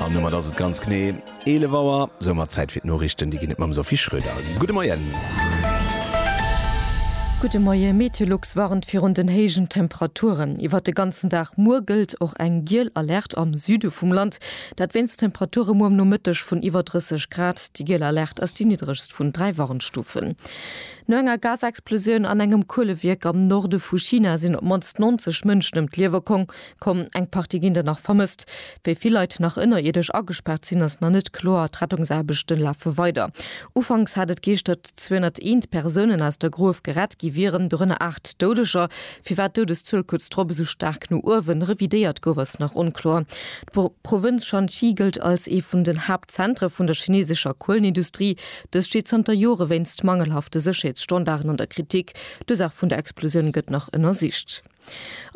An domat ass et ganz genee 11 Auer. Soumat Zäit fir d'Noriichten. Déi ginn et mam Sophie Schröder. Gudde Moien. Gudde Moie. Meteolux warnt virun den héijen Temperaturen iwwert de ganzen Dag. Muer gëllt och eng giel Alerte am Süde vum Land. Dat wéinst Temperature muer am Nomëtteg vun iwwer 30 Grad. Déi giel Alerte ass déi niddregst vun dräi Warnstufen. No enger Gasexplosioun an engem Kuelewierk am Norde vu China sinn op d'mannst 90 Mënschen ëm d'Liewe komm. Komm, eng Partie ginn der nach vermësst. Wéi vill Leit nach ënnerierdesch agespaart sinn, ass nach net kloer. D'Rettungsaarbechte lafe weider. Ufanks hat et geescht, datt 201 Persounen aus der Gruef gerett gi wieren, dorënner aacht Doudeger. Firwat d'Doudeszuel kuerz drop esou staark no uewen revidéiert gouf, ass nach onkloer. D'Provënz Shanxi gëllt als ee vun den Haaptzentre vun der chineesescher Kuelenindustrie. Dës steet zanter Jore wéinst mangelhafte Sécherheetsstandarden an der Kritik. D'Ursaach vun der Explosioun gëtt nach ënnersicht.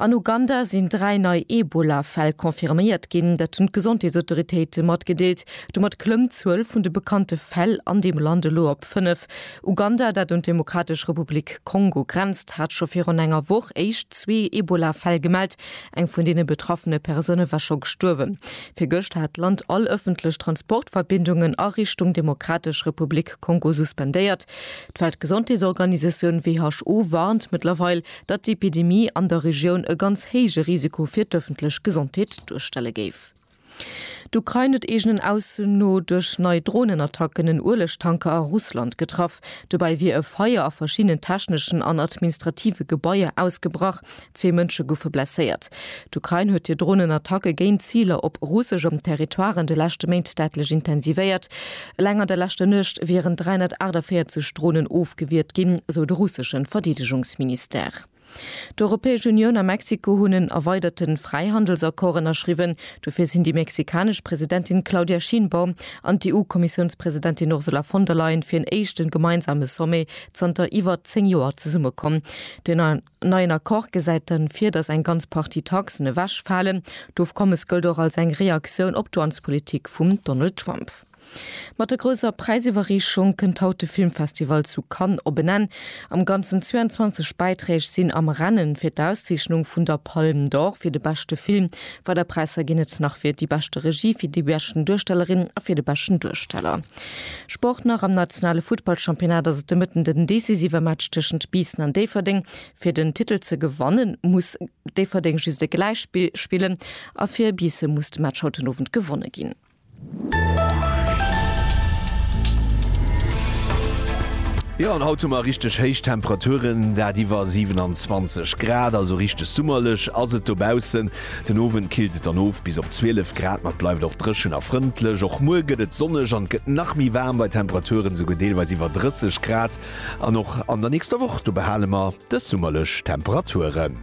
An Uganda sinn dräi nei Ebola-Fäll confirméiert ginn, dat hunn d'Gesondheetsautoritéite matgedeelt. Domat klëmmt d'Zuel vun de bekannte Fäll an deem Land elo op fënnef. Uganda, dat un d'Demokratesch Republik Kongo grenzt, hat scho virun enger Woch éischt zwee Ebola-Fäll gemellt. Eng vun deene betraffene Persoune war scho gestuerwen. Virgëscht hat d'Land all ëffentlech Transportverbindungen a Richtung Demokratesch Republik Kongo suspendéiert. D'Weltgesondheetsorganisatioun, WHO, warnt mëttlerweil, datt d'Epidemie an der Regioun e ganz héije Risiko fir d'ëffentlech Gesondheet duerstelle géif. D'Ukrain huet eegenen Ausso no duerch nei Dronenattacken en Uelegtanker a Russland getraff. Dobäi wier e Feier a verschiddenen techneschen an administrative Gebaier ausgebrach, zwee Mënsche goufe blesséiert. D'Ukrain huet hir Dronenattacke géint Ziler op russeschem Territoire an de leschte Méint däitlech intensivéiert. Eleng an der leschter Nuecht wieren 348 Dronen ofgewiert ginn, sou de russeschen Verdeedegungsministère. D'Europäesch Unioun a Mexiko hunn en erweiderten Fräihandelsaccord ënnerschriwwen. Dofir sinn déi mexikanesch Presidentin Claudia Sheinbaum an d'EU-Kommissiounspresidentin Ursula von der Leyen fir en éischten gemeinsame Sommet zanter iwwer 10 Joer zesummekomm, deen an En neien Accord gesäit dann vir, datt eng ganz Partie Taxen ewech falen. D'Ofkommes gëllt och als eng Reaktioun op d'Wanzpolitik vum Donald Trump. Mat der grousser Präisiwwerreechung kënnt haut de Filmfestival zu Cannes op en Enn. Am ganzen 22 Bäiträg sinn am Rennen fir d'Auszeechnung vun der Palme d'Or fir de beschte Film. Weider Präisser ginn et nach fir déi beschte Regie, fir déi beschten Duerstellerin a fir de beschten Duersteller. Sport nach, Am nationale Futtballchampionnat ass et de Mëtten den decisive Match tëschent Biissen an Déifferdeng. Fir den Titel ze gewannen, muss Déifferdeng just e Gläichspill spillen a fir Biisse muss de Match haut den Owend gewonne ginn. Jo an haut hu mer richteg héich Temperaturen, dat iwwer 27 Grad, also richteg summerlech ass et dobaussen. Den Owend killt et dann of bis op 12 Grad, ma et bleift och dréchen a frëndlech. Och muer gëtt et sonneg an et gëtt nach méi waarm bei Temperaturen esouguer deelweis iwwer 30 Grad. An och an der nächster Woch do behale mer dës summerlech Temperaturen.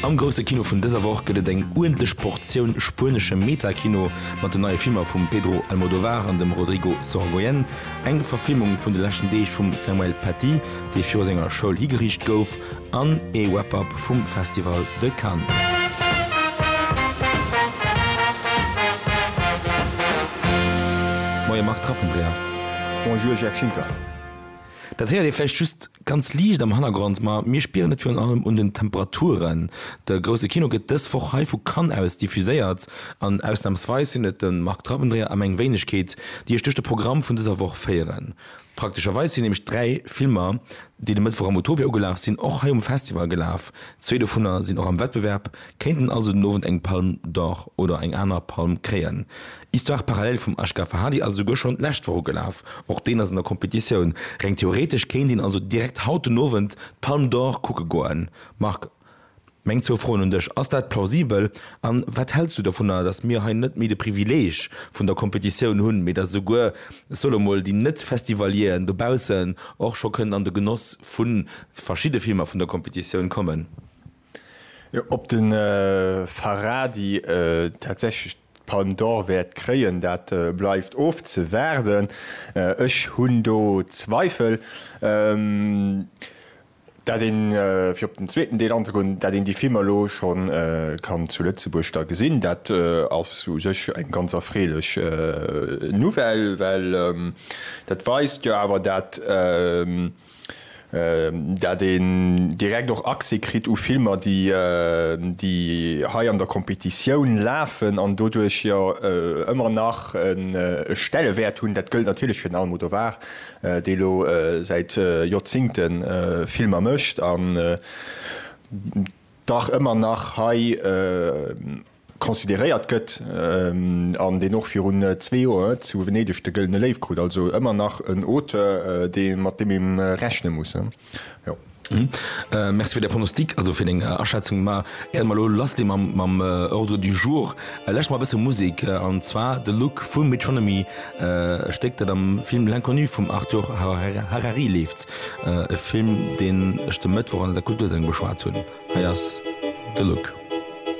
Am grousse Kino vun dëser Woch gëtt et eng uerdentlech Portioun spuenesche Meta-Kino mat den neie Filmer vum Pedro Almodovar an dem Rodrigo Sorogoyen. Eng Verfilmung vun de leschten Deeg vum Samuel Paty, dee viru senger Schoul higeriicht gouf, an ee Wrap-Up vum Festival de Cannes. Moie Marc Rappendréher. Bonjour Jeff Schinker. Dat héiert ee vläicht just Ganz liicht am Hannergrond, ma mir spieren et virun allem un den Temperaturen. De grousse Kino gëtt dës Woch hei vu Cannes aus diffuséiert an ausnamsweis sinn et de Marc Trabendreher a meng Wéinegkeet, déi Iech duerch de Programm vun dëser Woch féieren. Praktescherweis sinn nämlech dräi Filmer, déi de Mëttwoch am Utopia ugelaf sinn, och hei um Festival gelaf. Zwee dovunner sinn och am Wettbewerb Kéinten also den Owend eng Palme d'Or oder eng aner Palm kréien. Histoire parallèle vum Ashgar Farhadi ass esouguer schonn d'lescht Woch ugelaf. Och deen ass an der Competitioun. Reng theoretesch kéint een also direkt haut den Owend d'Palme d'Or kucke goen. Marc, meng zwou Froen un dech, Ass dat plausibel? An wat häls du dovunner, datt mir hei net méi de Privileeg vun der Competitioun hunn, mee datt esouguer, ech soe lo mol, déi Net-Festivalieren dobaussen och scho kënnen an de Genoss vu verschidde Filmer vun der Competitioun kommen? Ob de Farhadi tatsächlech d'Palme d'Or wäert kréien, dat bleift ofzewaarden. Ech hunn do Zweifel, dat een, fir op den zweeten Deel anzegoen, dat een déi Filmer elo scho kann zu Lëtzebuerg da gesinn. Dat ass u sech eng ganz erfreelech Nouvelle, well dat weist jo awer, dat dat een direkt och Accès kritt u Filmer, déi hei an der Competitioun lafen an doduerch jo ëmmer nach e Stellewäert hunn. Dat gëllt natierlech fir den Almodovar, dee elo säit Joerzingte Filmer mécht an dach ëmmer nach hei, consideréiert gëtt an deen och virun zwee Joer zu Venedeg de Gëllene Léiw krut. Also ëmmer nach en Auteur, dee mat deem ee rechne muss. Merci fir Är Pronostic, also fir deng Aschätzung. Mä éier mer elo lassgi mam Ordre du jour, lauschteren mer e bësse Musek, an zwar The Look vu Metronomy, e Stéck, dat am Film L'Inconnu vum Arthur Harari leeft, e Film, deen ech de Mëttwoch an der Kultursendung beschwat hunn. Hei ass The Look.